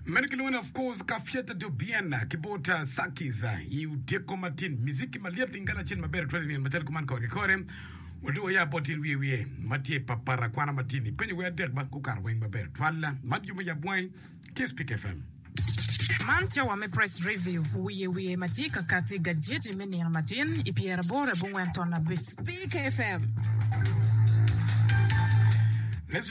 Meno kilwongo ni, of course, Kafyata Dobiana ki bot Sakiz i otyeko matin. Miziki ma lyet lingala acel maber tutwal i nino macalo kuman kore ki kore. Wadong waya bot in wiye wiye ma tye pa para kwana matin i penyo wer adek ba gukato weng maber tutwal. Man jube yab wangi ki Spik FM. Man cawa me Press Review wiye wiye ma tye ka kati gajeti me nino matin i pyeraboro abongwen ton abic. Spik FM.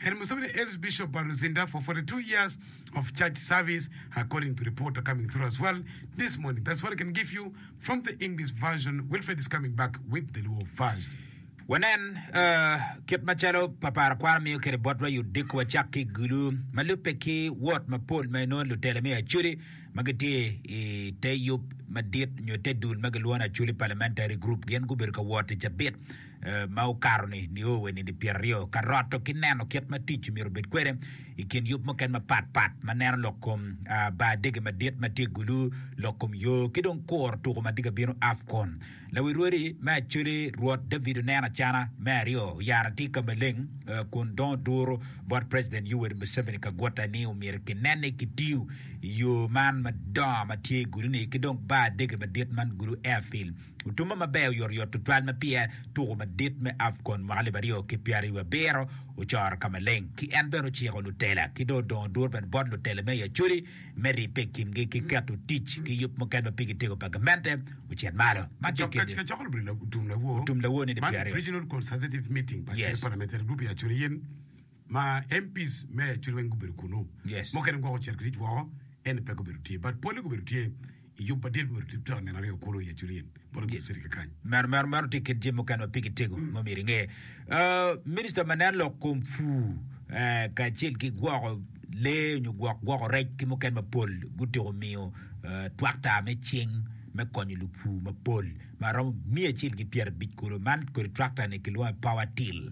Her Museveni hails Bishop Baruzinda for 42 years of church service according to reporter coming through as well this morning that's what I can give you from the English version Wilfred is coming back with the Luo version. Wanen kit macalo papara kwaro miyo kede botwa i odiko wacak ki i gulu ma lubbe ki wot mapol ma inongo lutelo me Acholi ma gitye i te yub madit nyo te dul ma gilwongo ni Acholi Parliamentary Group gin gubedo ka wot i cabit ma okato-ni nio wa nidi pyeraryo ka roto ki neno kit ma tic omyero obed kwede i kin yub mukene mapat pat ma neno lok kom bar dege madit ma tye gulu, lok kom yo ki dong kuro tuko ma tye ka bino Afcon. Lawi rwodi me Acholi Rwot David oneno acana me aryo oyaro atir ka maleng kun dongo duru bot President Yoweri Museveni Kaguta ni omyero ki nen ni ki tiyo yo man madongo ma tye i gulu-ni ki dong bar dege madit man gulu Airfield Utumba maber oyotoyot tutwal ma pire tuko madit me Afcon mwaka alip aryo ki pyeraryo wabiro ocoro ka maleng ki en bene ociko lutela ki dong odongo dur bene bot lutela me i Acholi me ribbe i kingi ki keto tic ki yub mukene ma pigi tego pa gamente ocit malo. Man tye kit Utum Lawo. ma MPs me cwiny weng gubedo kunu, Yes. mukene gwoko cito ki tic woko, ento pe gubedo tye, but pole gubedo tye i yub madit myero tye twero nino aryo kunu i Aculin bot gudo city kekany. Meno meno meno tye kit jami mukene ma pe gitego ma myero inge. Ah, Minista ma nen lok kom pur eh, kacel ki gwoko lee nyo gwok gwoko rec ki mukene mapol gutyeko miyo eh, twakta me cing me konyo lupur mapol ma romo miya acel ki pyerabic kulu man kodi twakta-ni kilwongo ni power till.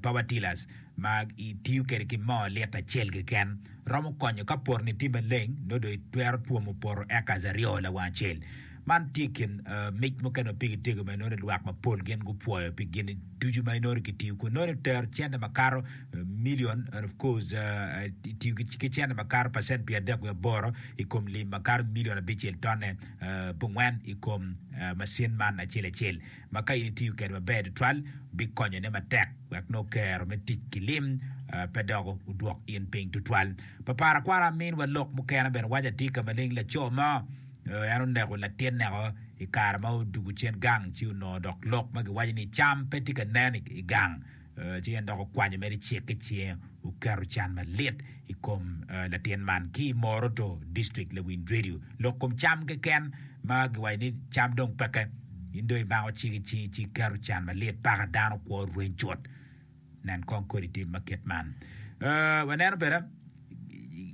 Power tillers ma itiyo kwede ki moo lita acel keken romo konyo ka potoni tye maleng nongo dong itwero twomo poto acres aryo lawang acel. Man tye i kin mic mukene ma pigi tego ma inongo ni lwak mapol gin gupwoyo pi gin ducu ma inongo ni kitiyo kwede. Inongo ni itero cente makato million and of course itiyo ki cente makato percent pyerdek wiye aboro i kom lim makato million abicel tonne pongwen i kom macin man acel acel. ma ka in itiyo kwede maber tutwal bikonyone matek wek nongo kero me tic ki lim pe doko odwok in piny tutwal. Pa parakwaro aminwa lok mukene bene waco atika maleng laco mo en oneko latineko i kare ma odwogo cen gang ci onongo dok lok ma giwaco ni cam pe tye ka nen i gang. Ci en dok okwanyo mere cek ki cinge, oketo can malit i kom latin man. Ki i Moroto District, Lewin Dwedyo, lok kom cam keken ma giwaco ni cam dong peke, in dong imako cik i cingi ci iketo can malit, paka dano kwo rweny cut. Nen kong kodi tim ma kit man. Waneno bene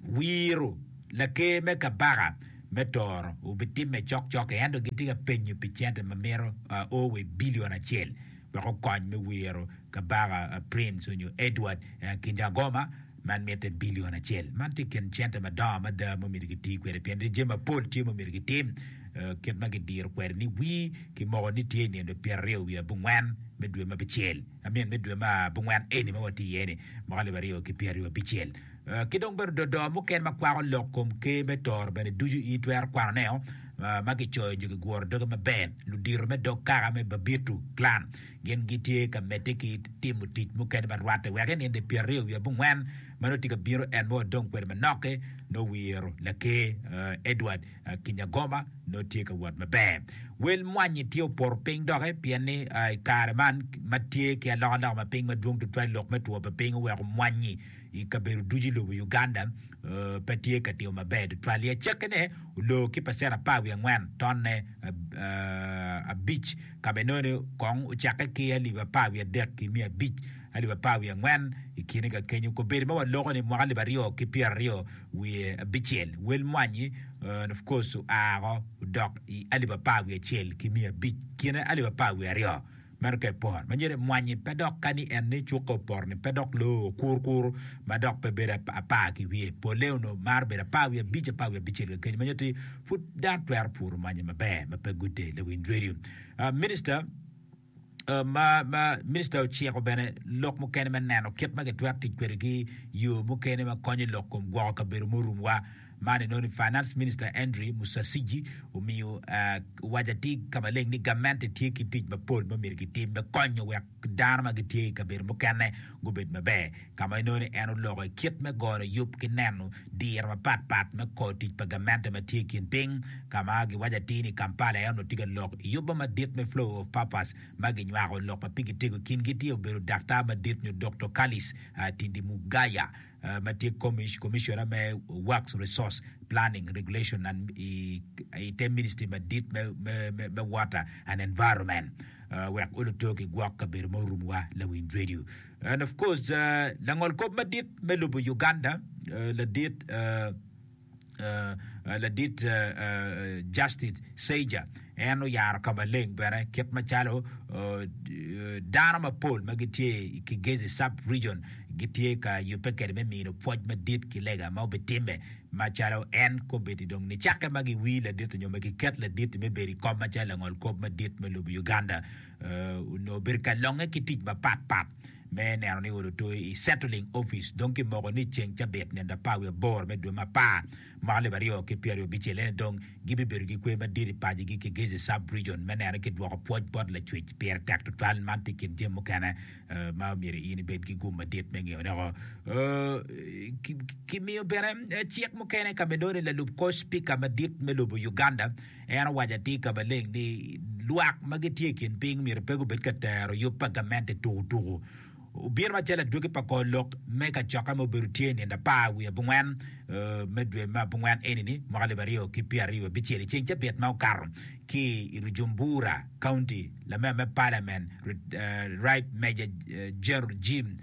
wiro laker me kabaka me Toro obitimme cokcok-ki ento gitye ka penyo pi cente ma mito o wa i bilion acel Doko kony me wiro Kabaka Prince onyo Edward Kinyagoma man mitte bilion acel. Man tye ikin cente madongo mada ma omyero giti kwede pien ni jami mapol tye ma omyero gitim kit ma gidiro kwede ni wir kimoko ni tye inino pyeraryo wiye abongwen me dwe ma abicel, I mean me dwe ma abongwen eni ma watye iye ni mwaka alip aryo ki pyeraryo abicel. Ki dong bene dodo mukene ma kwako lok kom Ker me toro bene ducu in itwero kwano ne o ma kicoyo nyo kiguro doge maber. Ludito me dog kaka me Babitu, clan, gin gitye ka medde ki timo tic mukene ma rwatte wek i ninde pyeraryo wiye abongwen ma nongo tye ka bino en ma wadong kwede manok-ki nongo wiro Laker Edward Kinyagoma nongo tye ka wot maber. Wel mwanyi tye opoto piny doki pien ni i kare man ma tye ki alokaloka ma piny madwong tutwal lok me two pa piny oweko mwanyi i kabedo ducu i lobo Uganda pe tye ka tiyo maber tutwal i acekkine oloo ki pacent apar wiye angwen, tonne abic, ka bene nongo ni kong ocakke ki alip apar wiye adek ki miya abic, alip apar wiye angwen i kine ka kenyo. Kobedo ma waloko ni mwaka alip aryo ki pyera aryo wiye abicel, wel mwanyi of course oa woko odok i alip apar wiye acel ki miya abic, kine alip apar wiye aryo. Meno ka epor ma nyero emwanyi pe dok ka ni en ni cuka opor ni pe dok loo okur kur ma dok pe bedo apar ki wiye. Polle onongo maro bedo apar wiye abic, apar wiye abicel ka kenyo ma nyero ti pud dano twero puro mwanyi maber ma pe gude. Lawiny Radio. Ah, Minister ma, ma Minister ociko bene lok mukene me neno kit ma kitwero tic kwede ki yoo mukene ma konyo lok kom gwoko kabedo murumwa. Man enongo ni Finance Minister Andrew Musasizi omiyo owaco atir ka maleng ni gamente tye ki tic mapol ma myero gitim me konyo wek dano ma gitye i kabedo mukene gubed maber, ka ma enongo ni en oloko i kit me goyo yub ki neno diro mapat pat me kor tic pa gamente ma tye i kin piny, ka ma giwaco atir ni Kampala aye onongo tye ka lok i yubbe madit me Flow of Purpose ma ginywako lok ma pigi tego. I kingi tye obedo Daktar madit nyo Doktor Kalis Tindimugaya. ma tye Commissioner me Works Resource Planning, Regulation and i te Ministry madit me Water and Environment wek oluto ki gwok kabedo ma orum wa Lawiny Radio and of course Langol kop madit me lobo Uganda ladit ladit Justice Seiger en oyaro ka maleng bene kit macalo dano mapol ma gitye i Kigezi Sub-Region gitye ka yubbe kwede me mino pwoc madit ki lega ma obitimme macalo en kombeddi dong nicakke ma giwir ladit nyo ma giket ladit me bedo i kom macalo langol kop madit me lobo Uganda. onongo obedo ka longe ki tic mapat pat me neno ni olo toyo i Settling Office. Dong kimoko ni ceng cabit nino apar wiye aboro me dwe me apar mwaka alip aryo ki pyeraryo abicel ene dong gibibedo ki kwer madit i pacigi ki Gezi Sub-Region me neno ni kidwoko pwoc bot lacwec pire tek tutwal. Man tye i kin jami mukene ma myero in ibed ki gum madit me ngeyo doko. Kimiyo bene cik mukene ka me nongo ni lalub kor Spika madit me lobo Uganda En owaco atika maleng ni lwak ma gitye i kin piny myero pe gubed ka tero yub pa gamente tukutuku. Obino macalo adwogi pa kor lok me kacokke ma obedo tye i nino apar wiye abongwen me dwe me abongwen eni-ni, mwaka alip aryo ki pyeraryo wiye abicel, i ceng Cabiat ma okato, ki i Rujumbura County, lamer me Parliament, Rit Major General Jim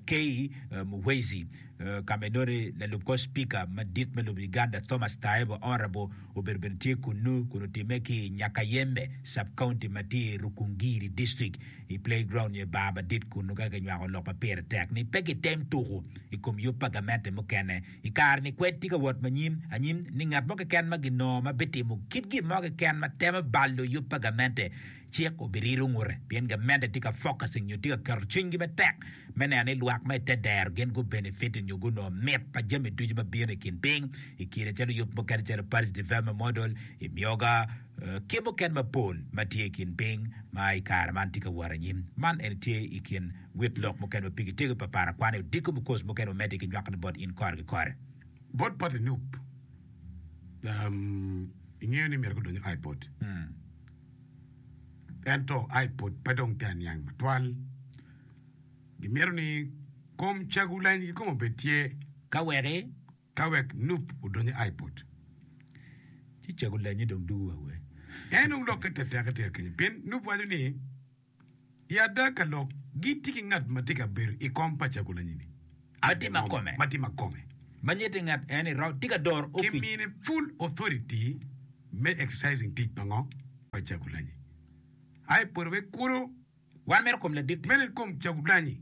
Kay Muhwezi, Ka bene nongo lalub kor Cipika madit me lobo Uganda Thomas Tayebwa Orabo obedo bene tye kunnu kun otimme ki i Nyakayembe Sub County ma tye i Rukungiri District i Play Ground nyo i bar madit kunnu ka kinywako lok ma pire tek ni pe kitem tuku i kom yub pa gamente mukene i kare ni kwed tye ka wot ma nyim anyim ni ngat mo keken ma ginongo ma bitimo kit gin mo keken ma temo balo yub pa gamente Cik obirilo ngute pien gamente tye ka focusing nyo tye ka keto cwinygi matek me neno ni lwak ma i te dero gin gu benefit nyo gunongo mit pa jami ducu ma bino i kin piny i kine calo yub mukene calo Paris Development Model, Imyoga, ki mukene mapol ma tye i kin piny ma i kare man tye ka wot anyim. Man eni tye i kin wit lok mukene ma pigi tego papar akwani odiko me course mukene wamedde ki nywakone bot in kore ki kore. Bot pati nup, ingeyo ni myero gudony I bot. ento aye pud pe dong tye aniang matwal. Gimito ni kom cagu leny ki kom obed tye. Ka weki? Ka wek nup odony i iPod. Ci cagu lenyi dong dugu wa wee. En dong lokke teteke tye kenyo pien nup waco ni. I adaka lok gitye ki ngat ma tye ka bedo i kom pa Cagulanyini Adingom ma tye makome, ma nyete ngat eni round tye ka doro opic. Kimine full authority me exercising tic pa ngo? Pa Cagulanyi. Aye pore wek kuro. Wan meno kom ladit. Meno i kom Cagulanyi.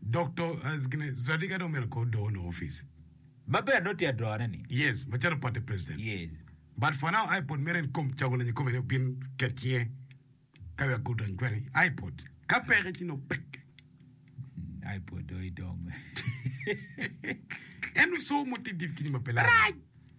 Dok to gine zadi ka dong mito ko doo no office. Maber dong tye adrone ni. Yes macalo party president. Yes. But for now ipod mere en kom cago lenye kome ni obin ket cinge ka wek gu dony kwede ipod ka peke ci nongo pek. Ipod dong idong. En so mo tidi kini ma pe laro. Rac.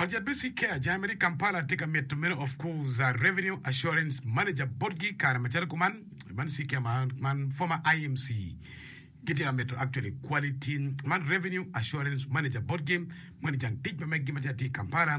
Ot yat me Seacare Jai mere i Kampala tye ka mito meno of course a Revenue Assurance Manager botgi i kare macalo kuman man Seacare man, man former IMC gitye ka mito actually quality man Revenue Assurance Manager botgi moni jang tic ma meggi ma tye atir i Kampala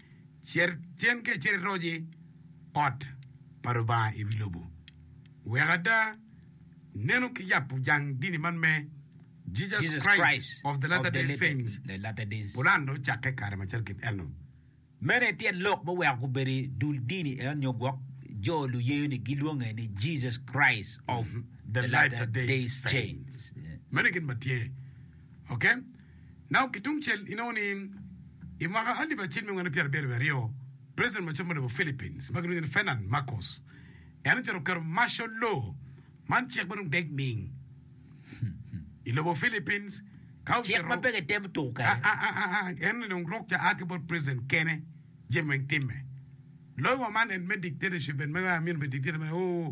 Cer cen ka icito iroc i ot pa Lubanga i wi lobo. Wek ada nenu ki yabo jang dini man me Jesus Christ of the Latter Day Saints pulan dong ocakke kare macalo kit eno. Meno aye tyen lok me weko gubedo i dul dini eno nyo gwok jo luyeyo ni gilwonge ni Jesus Christ of the Latter Day Saints. Meno aye gin ma tye. Ok. Now ki tung cel inongo ni i mwaka alip acel me nwen pyera abiro wiye aryo, president macon me lobo Philippines ma gilwongo ni Ferdinand Marcos en ocito oketo martial law man cik ma dong dec ming i lobo Philippines ka ocito cik ma pe kitemo tuku kwede en ni dong rok ca a ki bot president kene jami weng timme loyo wa man and me dictatorship and me amino bed dictator man ooh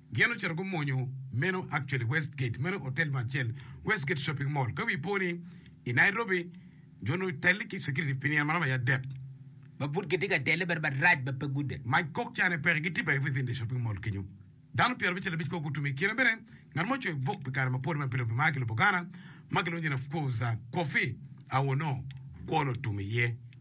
Gin ocito gumonyo meno actually West Gate meno otel mo acel West Gate shopping mall ka wi po ni I Nairobi jo onongo otelle ki security pi nino maromo aye adek. Ma pud gitye ka telle bene marac ma pe gude. Mac kok ca ne peke gitye bene within the shopping mall kenyo. Dano pyera abicel abic kok gutum. I kine bene ngat mo ocoyo buk pi kare mapol ma pe lubbe ma ki lobo Ghana ma kilwongo nyine of course Kofi Awoonor kwon otum iye.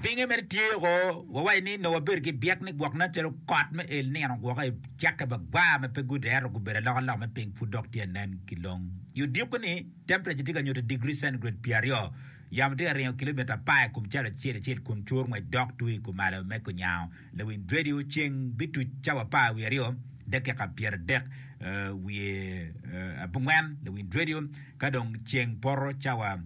Pinge mere tye o, wawaci ni nongo wabedo ki byek ni gwok nen calo kot me el nino gwoko i cakke bagwar ma pe gude ento gubedo alokaloka me piny pud dok tye ka nen ki long. I odiko ni, tempreca tye ka nyuto i digri centigrade pyer aryo, yamo tye ka ringo kilomita apar i kom calo acel acel kun cur ngwec dok twi i kumalo me kunyango lawiny redio. Ceng bituc cawa apar wiye aryo dakika pyeradek wiye abongwen lawiny redio ka dong ceng poto cawa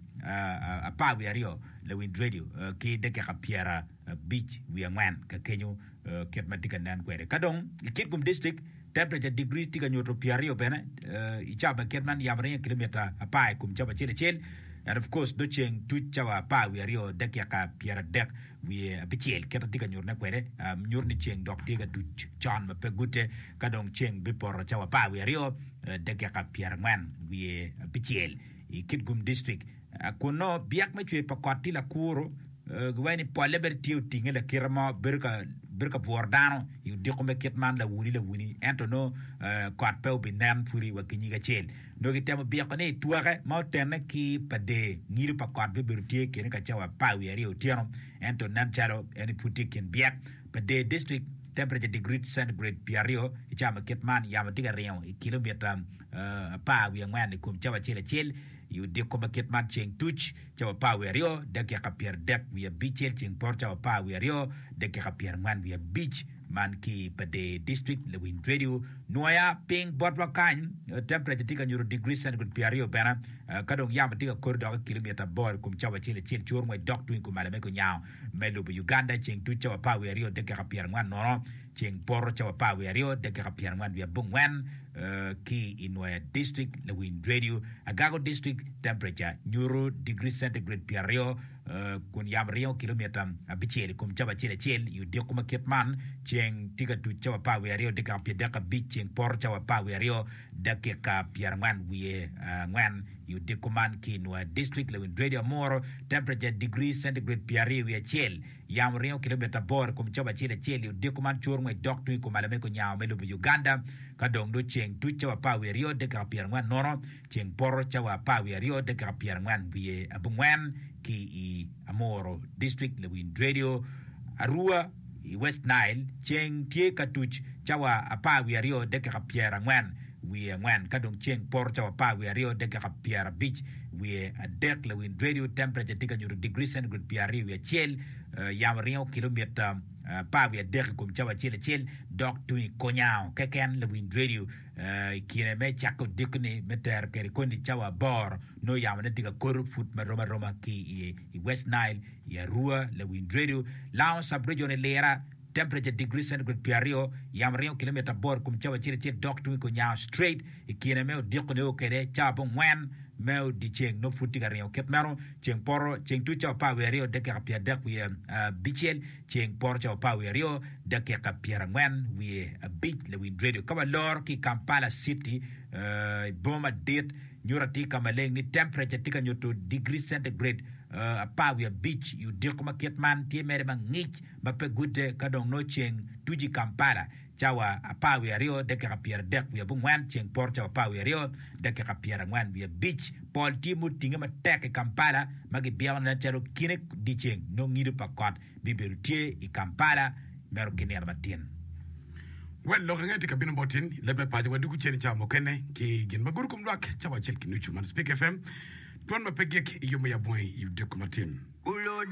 apar wiye aryo. Lawinj redio ki dakika pyera abic wiye angwen ka kenyo kit ma tye ka nen kwede. Ka dong i kit kom distrik, temperature digri tye ka nyuto pyer aryo bene i cawa ma kit man yamo ringo kilometer apar i kom cawa acel acel, and of course dog ceng tuc cawa apar wiye aryo dakika pyera adek wiye abicel kit ma tye ka nyuto ne kwede nyuto ni ceng dok tye ka tuc con ma pe gute ka dong ceng bipoto cawa apar wiye aryo dakika pyera angwen wiye abicel i kit kom distrik. Kunnu, byek me cwer pa kot tye lakuro, giwaco ni polle bene tye otinge lakite mo, bedo ka bworo dano i odiko me kit man lawuni lawuni, ento nongo kot pe obinen pwodi wa ki nyig acel. Nongo kitemo byeko ni twake ma otenne ki pa dee ngilo pa kot bibedo tye kene ka cawa apar wiye aryo otyeno, ento nen calo en pud tye i kin byek pa dee district temperature degree centigrade pyeraryo i cawa ma kit man yamo tye ka ringo i kilomita apar wiye angwen i kom cawa acel acel. I odiko ma kit man ceng tuc, cawa apar wiye aryo dakika pyeradek wiye abicel ceng poto cawa apar wiye aryo dakika pyerangwen wiye abic man ki Padee District, Lewin Radio, Nwoya ping botwa kany, temperature tye ka nyuto degree centigrade pyeraryo bene ka dong yamo tye ka kodi dok i kilometer aboro i kom cawa acel acel cur ngwec dok tung i kom alame ki onyango me lobo Uganda ceng tuc cawa apar wiye aryo dakika pyerangwen nono. Ceng poto cawa apar wiye aryo dakika pyer angwen wiye abongwen ki i Nwoya District, Lawiny Radio, Agago District, Temperature nyuto degree centigrade pyer aryo kun yamo ringo kilomita abicel i kom cawa acel acel i odiko ma kit man. Ceng tye ka tuc cawa apar wiye aryo dakika pyer dek abic ceng poto cawa apar wiye aryo dakika pyer angwen wiye angwen i odiko man ki i Nwoya District, Lawiny Radio, Amuru, Temperature degree centigrade pyer aryo wiye acel. Yamo ringo kilomita aboro i kom cobo acel acel i odiko man cur ngwec dok tung i kom alamego nyango me lobo Uganda. Ka dong dog ceng tuc cawa apar wiye aryo dakika pyera angwen nono, ceng poto cawa apar wiye aryo dakika pyera angwen wiye abongwen ki i Amoro District, Lawind Radio, Arua i West Nile, ceng tye ka tuc cawa apar wiye aryo dakika pyera angwen. wiye angwen ka dong ceng poto cawa apar wiye aryo dakika pyerabic wiye adek lawin radio temperature tye ka nyuto degree centigrade pyeraryo wiye acel yamo ringo kilomita apar wiye adek i kom cawa acel acel dok tung i konyango keken lawin radio i kine me cake odiko ni me tero kede koni cawa aboro nongo yamo ne tye ka koto put marom aroma ki i west nile i arua lawin radio lango subregion i lira Temperature, Digri centigrade pye aryo, Yamo ringo kilometer aboro ikom cawa acel acel dok tung ikor nyango, straight, ikine me odiko neko kede cawa pe ongwen me odiceng nongo pud tye ka ringo kit meno, ceng poto, ceng tuc cawa apar wiye aryo dakika pye adek wiye abicel, ceng poto cawa apar wiye aryo dakika pyer angwen wiye abic, Lawiny Radio ka waloro ki Kampala city I boma madit nyuto atir ka maleng ni temperature tye ka nyuto digri centigrade apar wiye abic I odiko ma kit man tye mere mangic ma pe gudde ka dong nongo ceng tuc i Kampala cawa apar wiye aryo dakika pyeradek wiye abongwen, ceng poto cawa apar wiye aryo dakika pyerangwen wiye abic. Pol tye ma otinge matek i Kampala ma gibyeko ni nen calo kine dyeceng nongo ngido pa kot bibedo tye i Kampala meno ki nino matin. Wel lok ange tye ka bino bot in i leb me paco wa dwogo cen i cawa mukene ki gin ma gudo kom lwak cawa acel ki nucu. Man Speak FM, dwan ma pe gik i yo me yab wangi i odiko matin.